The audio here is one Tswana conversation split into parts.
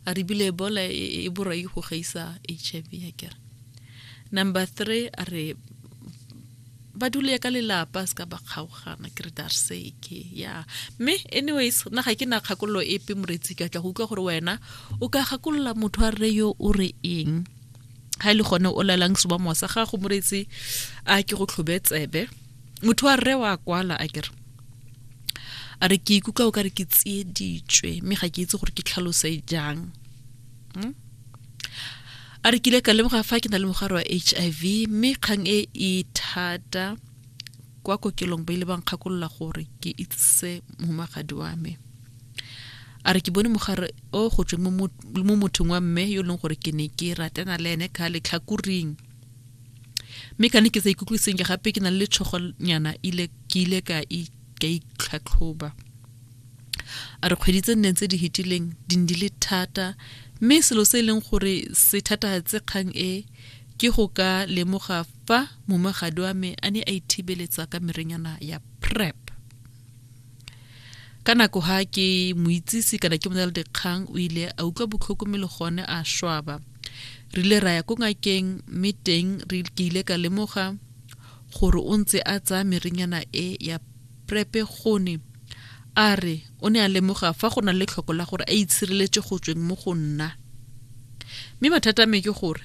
a re bile ebola e, e, e borai go gaisa h i v a kere number three a re ba dule ka lelapa se ka ba kgaogana ke re dar seke ya mme anyways nna ga ke na kgakololo epe moretsi ka tla go utlwa gore wena o ka gakolola motho a rre yo o re eng ga e le gone o lalang sebomo sa gago moretsi a ke go tlhobe tsebe motho wa rre wa kwala a kere a re ke ikutlwa o ka re ke tsieditswe mme ga ke itse gore ke tlhalose jang hmm? a re kile ka lemoga fa ke na le mogare wa h i v mme kgang e e thata kwa kokelong ba ile ba nkgakolola gore ke itsise mohumagadi wa me a re ke bone mogare o go tsweng mo mothong wa mme yo e leng gore ke ne ke ratana le ene ka letlhakoring mme ka ne ke sa ikutlwe sentle gape ke na le tshogonyana ile ke ile ka ka itlhatlhoba a re kgwedi tse nneng tse di hetileng di ne di le thata mme selo se e leng gore se thatagatse kgang e ke go ka lemoga fa momagadi wa me a ne a ithibeletsa ka merenyana ya prep ka nako ha ke moitsisi kana ke mona le dikgang o ile a utlwa botlhoko mme le gone a swaba re ile ra ya ko ngakeng mme teng re ke ile ka lemoga gore o ntse a tsaya merenyana e ya prepe gone a re o ne a lemoga fa go na le tlhoko la gore a itshireletse go tsweng mo go nna mme mathata a me ke gore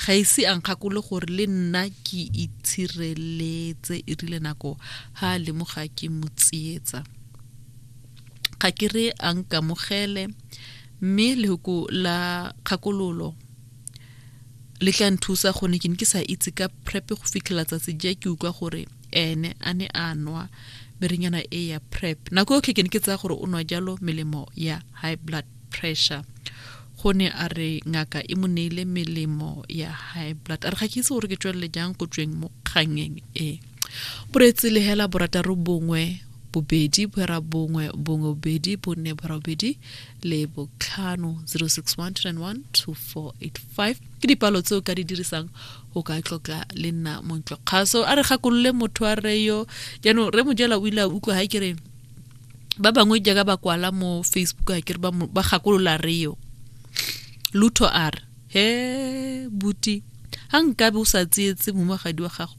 ga ise a nkgakole gore le nna ke itshireletse e rile nako ga a lemoga ke mo tsietsa ga ke re a nkamogele mme lehoko la kgakololo le tla nthusa gone ke ne ke sa itse ka prep go fitlhela tsatsi ja ke utlwa gore ene a ne a nwa merenyana e ya prep nako yotlhe ke ne ke tsaya gore o nwa jalo melemo ya high blood pressure go ne a re ngaka e mo neile melemo ya high blood a re ga ke itse gore ke tswelele jang go tsweng mo kgangeng e boreetse lehela borataro bongwe bobedi bora bongwe bongwe bobedi bone bora bobedi le botlhano 0612912485 ke dipalo tseo ka di dirisang go ka tlotla le nna montlokgaso a re gakolole motho a reyo jaanong re mojela o ile a utlwa ga e kereng ba bangwe jaaka ba kwala mo facebook a kere ba gakolola reo lutho a re he buti ga nkabe o sa tsietse momagadi wa gago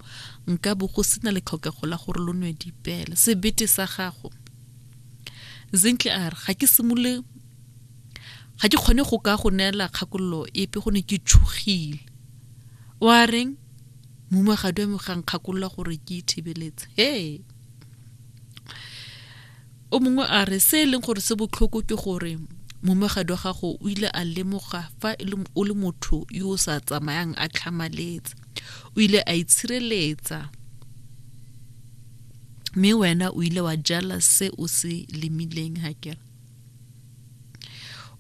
nkabe go sena le tlhokego la gore lo nwe dipele sebete sa gago zintle a re ga ke simole ga ke kgone go ka go neela kgakololo epe go ne ke tshogile wa reng mumagadi wa me ga nkgakolola gore ke ithibeletse he o mongwe a re se e leng gore se botlhoko ke gore momegadi wa gago o ile a lemoga fa e o le motho yo o sa tsamayang a tlhamaletse o ile a itshireletsa mme wena o ile wa jala se o se lemileng ga kere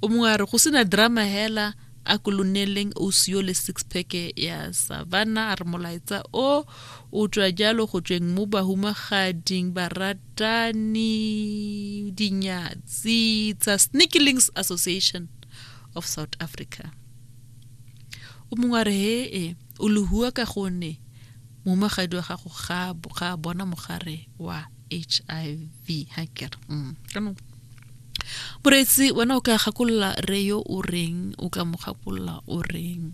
o mongwe a re go sena drama hela a ko loneleng ausi yo le six pack ya savana a re molaetsa o o tswa jalo go tsweng mo bahumagading baratani dinyatsi tsa sneakilings association of south africa o mongwe a re hee o lehua ka gonne mohumagadi wa gago ga a bona mogare wa hiv ha ke re mm. jaanong moreetsi wena o ka gakolola re yo o reng o ka mo gakolola o reng